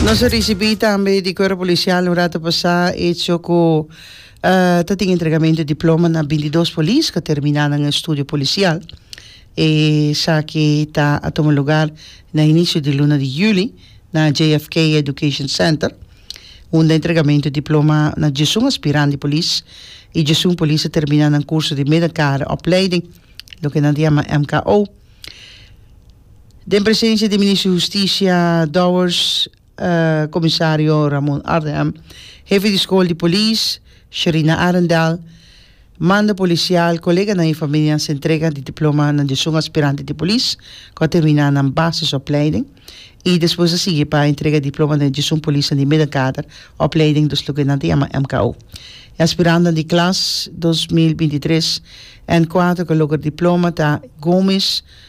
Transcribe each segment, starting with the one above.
Nos a ricibi tambe di Cuerpo Policial un rato pasá hecho cu ta tin entregamento di diploma na bintidos polis cu a terminá nan estudio policial. E esaki ta a tuma lugar na inicio di luna di juli na JFK Education Center unda entregamento di diploma na djesun aspirant di polis y djesun polis a terminá nan curso di midden kader opleiding loke nan ta yama MKO. Den presensia di Minister di Hustisia Dowers, Comisario Ramon Ardenham, Hefe di School di Polis, Sherina Arendal, Mando Policial, Coleganan y Familianan s'entrega di Diploma nan di esun Aspirante di Polis cu a termina nan Basis Opleiding y despues a sigui pa entrega di Diploma den esun Polisnan di Middenkader Opleiding dus loke nan ta yama MKO. E Aspirantenan di Klas dos mil binti tres N kuater cu a logra Diploma ta Gomis,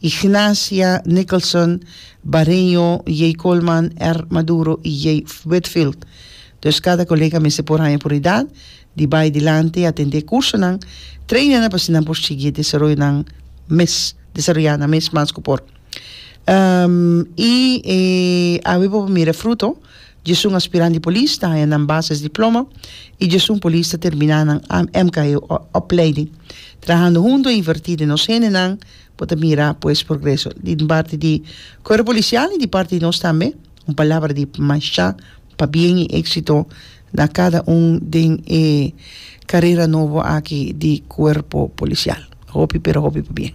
Ignacia Nicholson, Bareño, J. Coleman, R. Maduro y J. Whitfield. Dus cada colega mester por haña puridad di bay dilanti atende e cursonan, traina nan pa así nan por sigui e desaroyo nan mes, desaroya nan mes mas cu por. Y awe bo por mira e fruto Djesun aspirant di polis ta haña nan bases diploma i djesun polis ta terminá nan MKE opleiding. Trahando huntu e invertí den nos hendenan bo ta mira pues progreso den parti di Kuerpo Polisial i di parti di nos tambe. Un palabra di mashá pabien i éksito na kada un den e karera nobo aki di Kuerpo Polisial. Hopi pero hopi pabien.